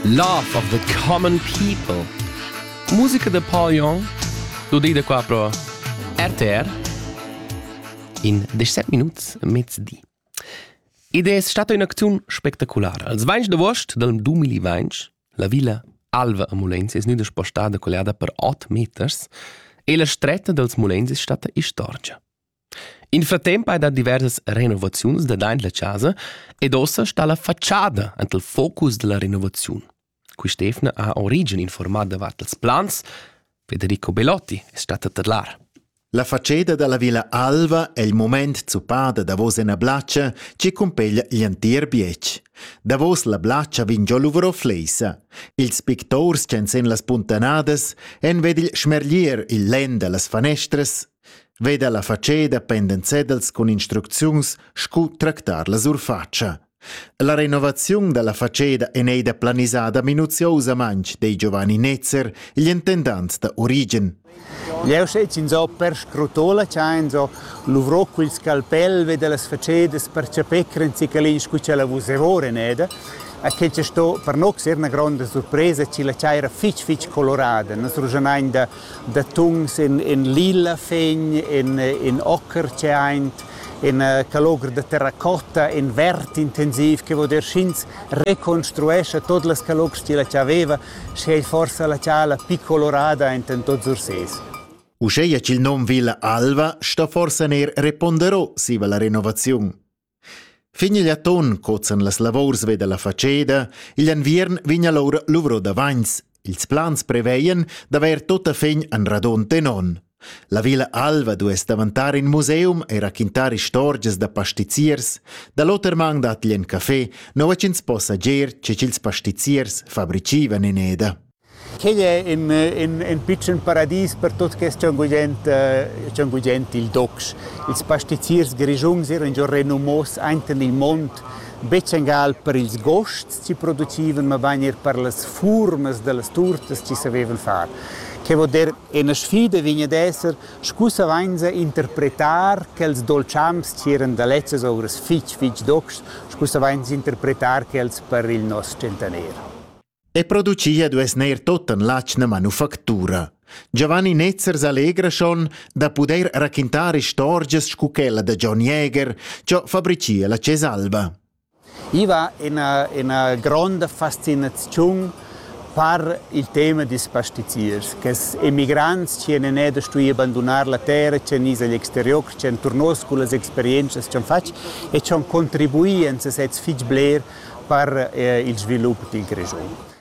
Love of the Common People. Musica da Paul Young, du dei da qua pro RTR in 17 minuts mezdi. Id es stata un'acziun spectaculara. Als 20 d'agost del 2020, la villa Alva a Mulenz es gnüda spostada colliada per 8 meters e la stretta dels Mulenz è stata istorgia. In fratemp hai dà diversas renovaziuns dadaint la chasa ed uossa sta la fatschada ant il focus da la renovaziun. Quist'eivna ha Origen informà davart ils plans. Federico Belotti es stat a tadlar. La fatscheda da la Villa Alva è il moment zuppada davos ina blatscha che cumpeglia l'entir bietg. Davos la blatscha vegn giò luvro fleisa. Ils pictors ch'en sen las puntanadas en ved il schmerglier il len da las fanestras Veda la fatscheda pendent cedels cun instrucziuns scu tractar la surfatscha. La renovaziun dalla fatscheda en ei da planisada minuziosamaintg dei Giovanni Netzer, igl intendant da Origen. Jeu sez in so perscrutola chain so luvrò quel scalpel ve delle facedas per chapè crenzicalin scu c'è la vuserore neda. A che c'è sto per no ser una grande sorpresa ci la c'era fitch fitch colorada, nos rugenain da da tuns in, in lila fegn, in, in ocher tscheint, in uh, calogr da terracotta, in vert intensiv che vuol dir sch'ins reconstruescha tot las calogs che la aveva, sche ei forsa la ciala più colorada enten tots Ursés. Uscheia ch'il nom Villa Alva sta forsa ner reponderò siva la renovaziun. Fin igl atun cozan las lavurs ve dalla fatscheda, igl enviern vegn allura luvro davants. Ils plans preveien d'haver tota fin en radon tenon. La Villa Alva duess davantar in museum e raquintar istorgias da pastiziers. Da l'oter mang dat gli en café, nova ch'ins possa ger che ch'ils pastiziers fabricivan in eda. Quei è in, in, in pitschen paradis per tut quest schon gugent, schon gugent il docs. Ils pastiziers grischuns eran già renumos ainten il mond, betg engal per ils gosts chi producivan, mabain er per las furmas da las turtas chi savevan far. Che vo dir, ena sfida vegn ad esser, scu savainsa interpretar quels dolciams chi eran da lezzas ouras fitg, fitg docs, scu savainsa interpretar quels per il nos tschentaner. e producia duess neir tottan l'atschna manufactura. Giovanni Netzer s'allegra schon da pudair raquintar istorgias scu quella da John Jäger, ciò fabricia la Cesalva. I va ina, ina gronda fascinaziun par il tema dis pastiziers, che emigrants ci en eda stui abandonar la terra, ci en is agl exterior, ci en turnos cu las experiences ci han fatg e ci han contribui en sesez fitg bler per il svilup dil Grischun.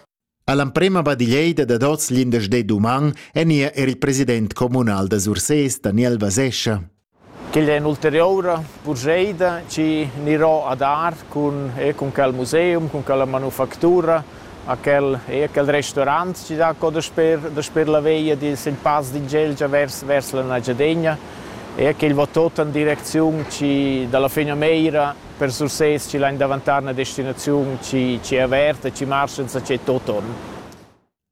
All'emprema badiglieida dad oz l'indesch d'uman enia er il president communal da Sursés, Daniel Vasescha. Quella è un'ulteriora purscheida che anirò a dar con, e con quel museum, con quella manufactura a quel, e a quel restaurant che dà co da sper, da sper la veia di il pass di Gelgia vers, vers la Nagiadegna e che va tot in direzione che dalla fine Meira Per Sursés chi lain davantar üna destinaziun chi chi è averta, chi marcha insachet toton.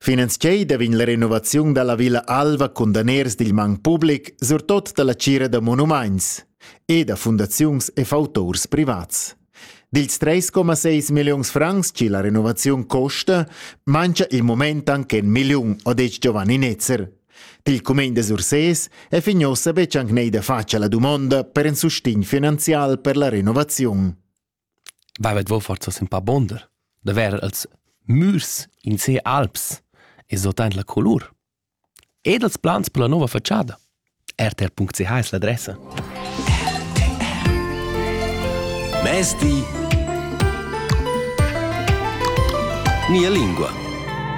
Finanziei da vegn la renovaziun dalla Villa Alva cun daners dil mang public, surtot dalla tgira da monumaints e da fundaziuns e fautors privats. Dils 3,6 milliuns francs che la renovaziun costa, mancha il moment anche 1 milliun, ha detg Giovanni Netzer. Pil cumegn da Sursés è fin ussa betg anc nei da fatg la dumonda per in sustegn finanzial per la renovaziun. Vavet vo forza sin pa bonder, da ver als mürs in se alps e sotent la colur. Ed als plans per la nova facciada. rtr.ch es l'adressa. Mezdi. Mia lingua.